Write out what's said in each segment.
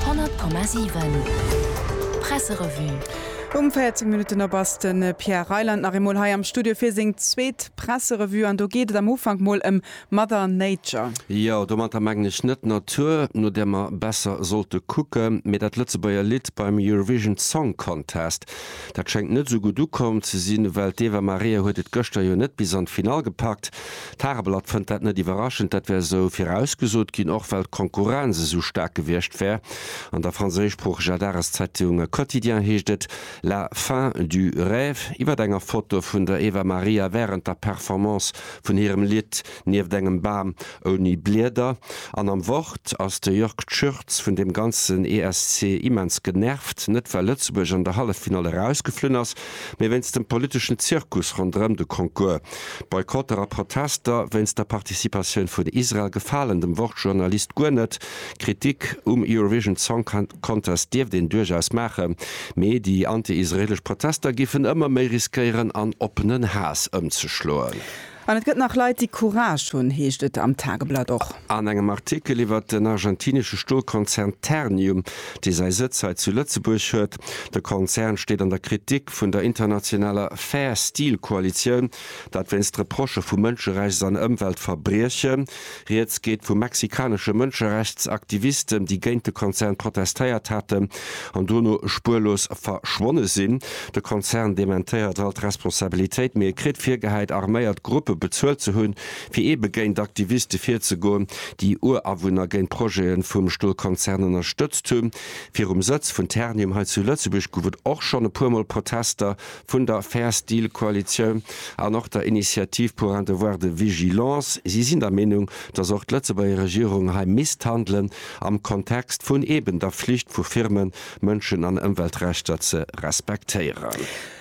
100,7 Presserevue. Um 14 Minutten op ass de Pierre Reyland nach eemol hei am Studio fir seng zweet Presserevue an do geet et am Ufank mol ëm Mother Nature. Jo, domatter mengen ech net d'Natur, no där mer besser sollte kucken, mee dat Lëtzebuerger Lidd beim Eurovision Song Contest. Dat schéngt net esou gutt ukomm ze sinn, well d'Eva Maria huet et gëschter jo net bis an d'Finall gepackt. D'Tageblatt fënnt dat net iwwerraschend, dat wär esou virausgesot ginn, och well d'Konkurrenz esou staark gewiescht wär. An der franséischsproocheger Dageszeitung Quotidien heescht et La fin du rêve iwwer enger Foto vun der Eva Maria wärend der Performance vun hirem Lidd Nieft engem Bam ouni Blieder. An am Wort ass de Jörg Tschürz vun deem ganzen ESC immens genervt, net well Lëtzebuerg an der Halleffinall erausgeflunn ass, mee wéinst dem politeschen Zirkus ronderëm de Concours. Boykotter a Protester wéinst der Participatioun vun Israel gefalen dem Wort-Journalist guer net. Kritik um Eurovision Song Contest dierft een duerchaus maachen, mee déi anti-israelesch Protester géifen ëmmer méi riskéieren an oppenen Haass ëmzeschloen. An et gëtt nach Leit, déi Courage hunn, heescht et am Tageblatt och. An engem Artikel iwwert den argentinesche Stolkonzern Ternium, dee säi Sëtz hei zu Lëtzebuerg huet. De Konzern steet an der Kritik vun der internationaler Fair Steel Koalitioun, dat wéinst Reprochë vu Mënscherechts an Ëmweltverbriechen. Rieds geet vu mexikanesche Mënscherechtsaktivisten, déi géint de Konzern protestéiert haten an dono spuerlos verschwonne sinn. De Konzern dementéiert all d'Responsabilitéit, mee e kritt virgehäit, arméiert Gruppe bezuelt ze hunn, fir eebe géint Aktiviste virzegoen, déi Urawunner géint Projete vum Stolkonzern ënnerstëtzt hunn. Virum Sëtz vun Ternium hei zu Lëtzebuerg gouf et och schonn e puer Mol Protester, vun der Fair Steel Koalitioun an och der Initiative pour un devoir de vigilance. Si sinn der Meenung, datt och d'Lëtzebuerger Regierung hei misst handelen am Kontext vun eben der Flicht vu Firmen, Mënschen an Ëmweltrechter ze respektéieren.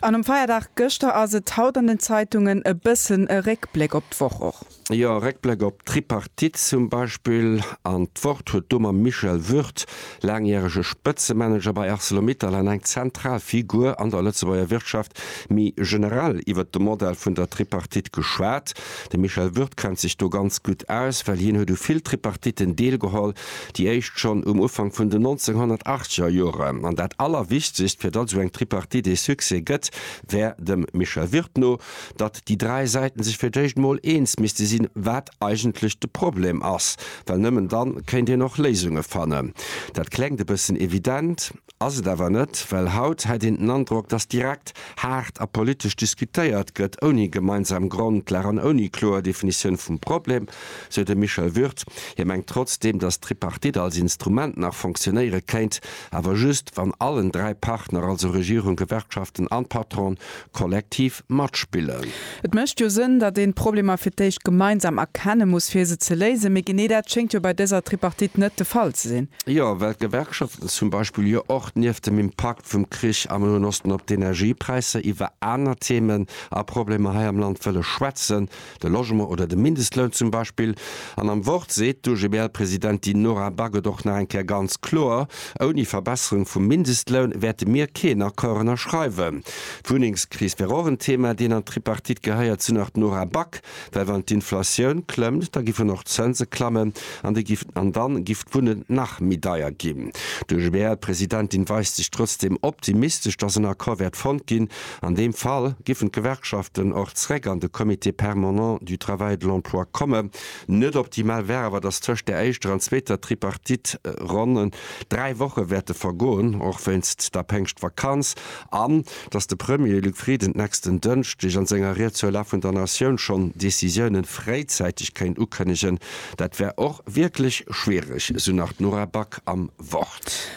An um Feierdag gëschter ass et haut an den Zeitungen e bëssen e Réckbléck op d'Woch och. Jo, Réckbléck op d'Tripartite zum Beispill. An d'Wort huet do mam Michel Würth, laangjärege Spëtzemanager bei Arcelor-Mittal-an eng zentral Figur an der Lëtzebuerger Wirtschaft, méi generell iwwert de Modell vun der Tripartite geschwat. De Michel Würth kennt sech do ganz gutt aus, well hien huet u vill Tripartiten deelgeholl, déi éischt schonn um Ufank vun den 1980 er Joren. An dat Allerwichtigst, fir datt esou eng Tripartite ee Succès gëtt, wär dem Michel Würth no, datt déi dräi Säiten sech fir d'éischt emol eens misste sinn, wat eigentlech de Problem ass, well nëmmen dann kéint een och Léisunge fannen. Dat klengt e bëssen evident, ass et awer net, well haut hätt een den Androck, datt direkt haart a politesch diskutéiert gëtt, ouni gemeinsam Grondlag an ouni kloer Definitioun vum Problem, sou de Michel Würth. Hie mengt trotzdeem, datt d'Tripartite als Instrument nach fonctionéiere kéint, awer just, wann allen dräi Partner, also Regierung, Gewerkschaften an Patron, kollektiv matspillen. Et mécht jo Sënn, datt een d'Problemer fir d'éischt gemeinsam erkenne muss, fir se ze léisen. Mee genee dat schéngt jo bei dëser Tripartite net de Fall ze sinn. Jo, well d'Gewerkschaften zum Beispill jo och nieft dem Impakt vum Krich am Noen Osten op d'Energiepräisser iwwer aner Themen a Problemer hei am Land wëlle schwätzen. de Logement oder de Mindestloun zum Beispill, an am Wort seet d'OGBL-Presidentin Nora Back et och nach eng Kéier ganz kloer, Ouni Verbesserung vum Mindestloun wäerte mir keen Accord ënnerschreiwen. D'Wunnengskris wär och en Thema, deen an d'Tripartite gehéiert, sou nach d'Nora Back, well wann d'Inflatioun klëmmt, da giffen och d'Zënse klammen an de giff an dann giff d'Wunnen nach méi deier ginn. D'OGBL-Presidentin weist sech trotzdeem optimistesch, datt en Accord wäert fonnt ginn. An deem Fall giffen d'Gewerkschaften och zréck an de Comité permanent du travail et de l'emploi komme. Net optimal wär awer, datt tëscht der éischter an zweeter Tripartite ronn dräi Woche wäerte vergoen, och wéinst der Péngschtvakanz, an datt de Premier Luc Frieden d'nächsten Dënschdeg an senger Ried zur Lag vun der Natioun schonn Decisiounen fréizäiteg kéint ukënnegen. Dat wär och wierklech schwiereg, esou nach d'Nora Back am Wort.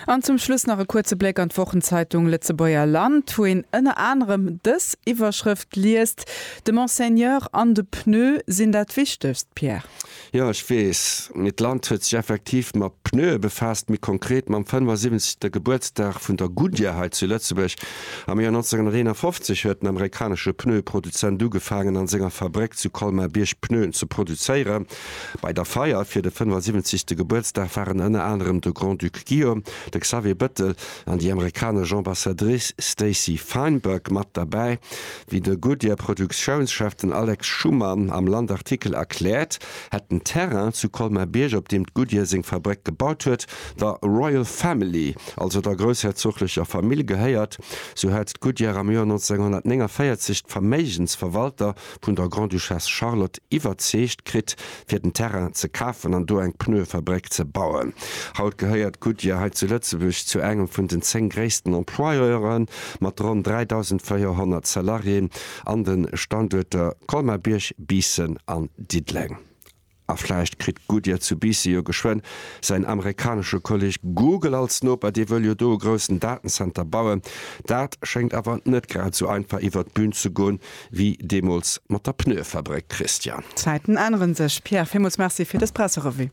An zum Schluss nach e kuerze Bléck an d'Wochenzeitung Lëtzebuerger Land, wou een ënner anerem dës Iwwerschrëft liest, De Monseigneur an de Pneu sinn dat Wichtegst, Pierre. Jo, ech weess. Mee d'Land huet sech effektiv mat Pneue befaasst, méi konkret mam 75. Gebuertsdag vun der Goodyear hei zu Lëtzebuerg. Am Joer 1951 huet den amerikanesche Pneueproduzent ugefaangen, an senger Fabréck zu Colmar-Bierg Pneuen ze produzéieren. Bei der Feier fir de 75. Gebuertsdag waren ënner anerem de Grand-Duc Guillaume, de Xavier Bettel an déi amerikanesch Ambassadrice Stacey Feinberg mat derbäi. Wéi de Goodyear-Produktiounschef, den Alex Schumann, am Land-Artikel erkläert, hätt den Terrain zu Colmar-Bierg, op deem d'Goodyear seng Fabréck gebaut huet, der Royal Family, also der groussherzoglecher Famill, gehéiert. Sou hat d'Goodyear am Joer 1949 d'Verméigensverwalter vun der Grande-Duchesse Charlotte iwwerzeegt kritt, fir den Terrain ze kafen an do eng Pneue-Fabréck ze bauen. Haut gehéiert Goodyear hei zu Lëtzebuerg zu engem vun den zéng gréissten Employeure mat ronn 3.400 Salariéen an de Standuerter Colmar-Bierg, Biissen an Diddeleng. A vläicht kritt Goodyear zu Biissen jo geschwënn säin amerikanesche Kolleg Google als Noper, dee wëll jo do e groussen Datenzenter bauen. Dat schéngt awer net grad esou einfach iwwert d'Bün ze goen, wéi deemools mat der Pneuefabréck, Christian. D'Zäiten änneren sech, Pierre. Villmools Merci fir dës Presserevue.